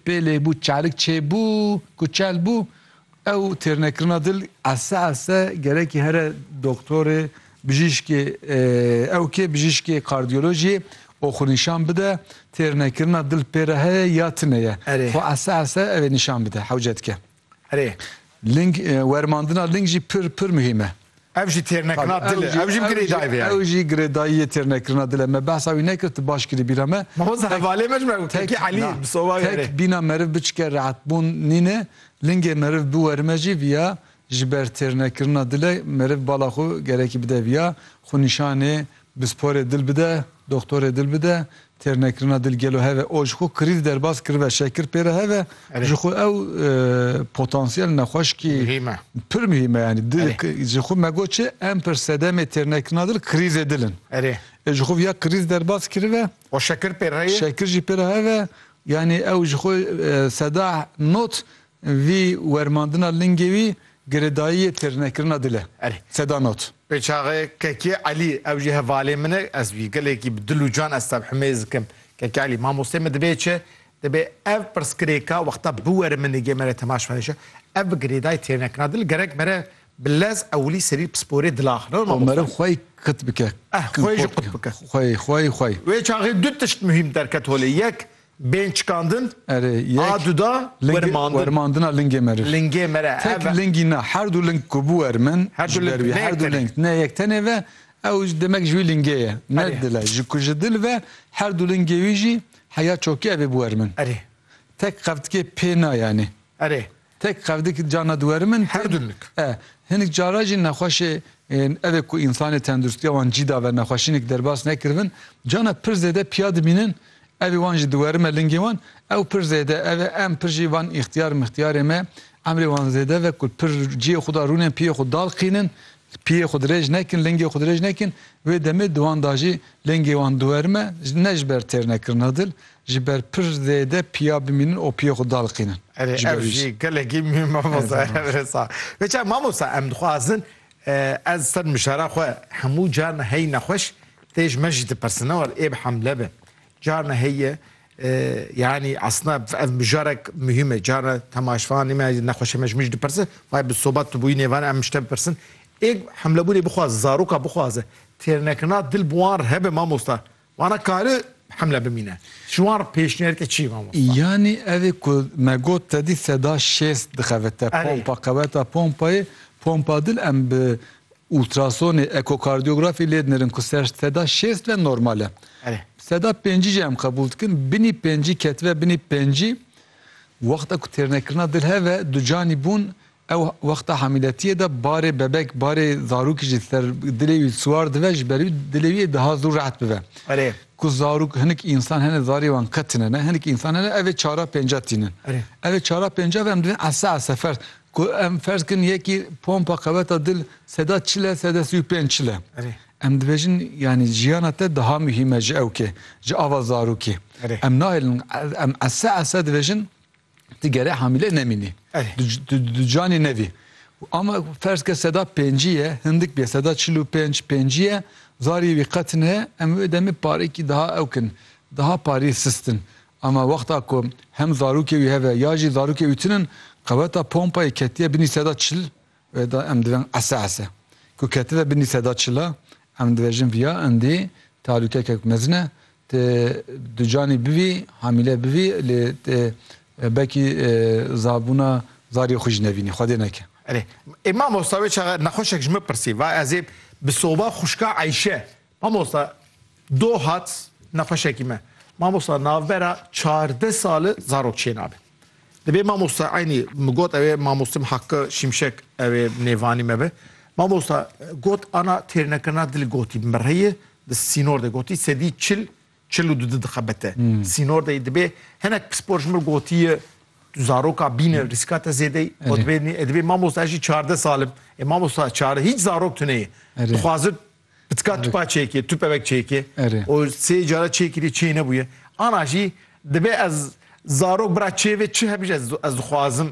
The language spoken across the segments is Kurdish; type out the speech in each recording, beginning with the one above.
Pê lê bû çarik çêbû ku çel bû ew têrnekirina dil ese ese gerekî here doktorê bijîşkê ew kê bijîşkê kardiyolojiyê û xwe nîşan bide têrnekirina dil pê re heye ya tine ye xwe ese ese ew ê nîşan bide hewce dike. Erê. Ling, wermandina ling jî pir pir muhîm e. Ev jî têrnekirina dil e. Ew jî girêdayî vê yayê. Ew jî girêdayîyê têrnekirina dil e. Me behsa wî nekir, tu baş kirî bîra me. Mamosta hevalê me ji me got, Kekî Elî, bi sovayê erê. Tek bîna meriv biçike rehetbûn nîn e. Lingê meriv biwerime jî viya ji ber têrnekirina dil e. Meriv bala xwe gerekî bide viya. Xwe nîşanê bi sporê dil bide, doxtorê dil bide, Têrnekirina dil gelo hev e. O ji xwe krîz derbas kiribe, şekir pê re hev e. Ji xwe ew potansiyel nexweşikî pir muhîm e. Yanî dil ji xwe me got çi? Em pir sedemê têrnekirina dil krîzê dil in. Ê ji xwe viya krîz derbas kiribe. O şekir pê re ye? Şekir jî pê re hev e. Yanî ew ji xwe seda not Vî wermandina lingê wî girêdayiyê têrnekirina dil e. Erê. Seda not. Pêçaxê Kekê Elî, ew jî hevalê min e, ez wî gelekî bi dil û can ez tevhimê zikim. Kekê Elî, Mamosteyê min dibê çi? Dibê ev pirsgirêka wexta biwere min nigê me re temaşvanê çi? Ev bi girêdayê têrnekirina dil gerek mere bi lez ewilî serî pisporê dil axivin. Rewin mamoste. Meriv xwe yê qit bike. Eh, xwe yê jî qit bike. Xwe yê, xwe yê, xwe yê. Wê çaxê du tişt muhîm derket holê. Yek, Bên çikandin a duda wermandina lingê meriv. Lingê mere. Tek lingî na her du ling ku bû ermin ji ber wî her du ling ne yek tenê ve ew demek ji wî lingê ye. Ne dil e. Ji ku ji dil ve her du lingê wî jî heya çokî ev ê bû ermin. Erê. Tek qevtikê pê na yanî. Erê. Tek qevdik carna duwerim in. Her du lik. E, hinik cara jî nexweşê ên evê ku însanê tenduristiya wan cî dave nexweşînik derbas nekiribin, carna pir zêde piya dibînin evê wan ji duwerime lingê wan, ew pir zêde ev e em pir jî van îxtiyar mixtiyarê me emrê wan zêde ve ku pir ciyê xwe da rûnên piyê xwe dalqînin Piyê xwe dirêj nekin, lingê xwe dirêj nekin, wê demê di wan de jî lingê wan diwerim e, ne ji ber têrnekirina dil, ji ber pir zêde piya bimînin û piyê xwe daliqînin. Erê Ji ber ev wî jî jî. gelekî mî mamosta Erdem Erê sa. Wê çav mamosta em dixwazin ez ser mişara xwe hemû carna hey nexweş tê ji me jî dipersin ne war ê bi hemle be. Carna heye Yanî esna ev mijarek muhîm e. Cara temaşvanê me nexweşê me ji min jî dipirse, Vay bi sobat tu bûyî nêvan em ji te bipirsin. Ê hemlebûnê bixwaze, zaroka bixwaze. Têrnekirina dil bi wan re hebe mamosta. Wana kare hemle bimîne. Ji wan re pêşniyarke çi ye mamosta? Yanî evê ku me got te dî seda şêst dixebitte pompa qeweta pompayê. Pompa dil em bi Ultrasonê, ekokardiyografê lê dinirin ku ser seda şêst ve normal e. Seda pêncî jî em qebûl dikin. Binî pêncî ketibe binî pêncî wexta ku têrnekirina dil heve du canî bûn ew wexta hamîletiyê de barê bebek barê zarokî jî ser dilê wî siwar dive ji ber wî dilê wî ê daha zû rehet bibe. Ku zarok hinik însan hene zarê wan qet tune ne hinik însan hene ev ê çara pênca tînin. Ev ê çara pênca ve em divên ese ese fers Ku em ferz kirin yekî pompa qeveta dil seda çil e, seda sî û pênc çil e. Em dibêjin yanî jiyana te daha muhîm e ji ewkê, ji ava zarokê. Em nahêlin em ese ese dibêjin tu gerê hamîle nemînî. Tu di canê nevî. Ama ferz ke seda pêncî ye, hindik bê seda çil û pênc pêncî ye, zarî wî qet ne, em wê demê parekî daha ewk in. Daha parî sistin. Ama wexta ku hem zarokê wî heve ya jî zarokê wî tune in, qeweta pompayê ketiye binî seda çil wê de em dibin ese ese. Ku ketibe binî seda çil a, em dibêjin viya indî talûkekek mezin e. Tê du canî bivî, hamîle bivî lê tê belkî zabûna zarê xwe jî nevînî. Xwedê neke. Erê, ê mamosta wê çaxe nexweşek ji min pirsî. Va ez ê bi soba xwişka Eyşe Mamosta Do hat nexweşekî me. Mamosta navbera çardeh sali zarok çênabe. Divê mamosta eynî min got ew ê mamostim Hakkı Şimşek ew ê nêvanî me be. Mamosta got ana têrnekirina dilê gotî bi mireyê di sînor de gotî sedî çil çil û du di dixebite sînor de dibê hinek pispor ji min gotiye tu zaroka bîne rîska te zêde yî got bênî e dibê mamosta ez jî çardeh sal im. Ê mamosta çardeh hîç zarok tuneyê dixwazin Bi tika tupa çêkê, tupevek çêkê û sê cara çêkirî çê nebûye. Ana jî dibe ez zarok bira çêvê çi hebî ez ez dixwazim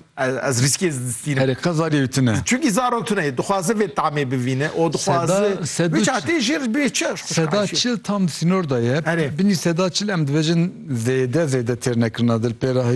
ez rîskê ez distîne. Herê qezarî ew tune. Çunkî zarok tune ye dixwaze vê tamê bivîne û dixwaze wî çatê jê re bê çi Seda çil tam di sînor de ye. Binî seda çil em dibêjin zêde zêde têrnekirina dil pê re heye.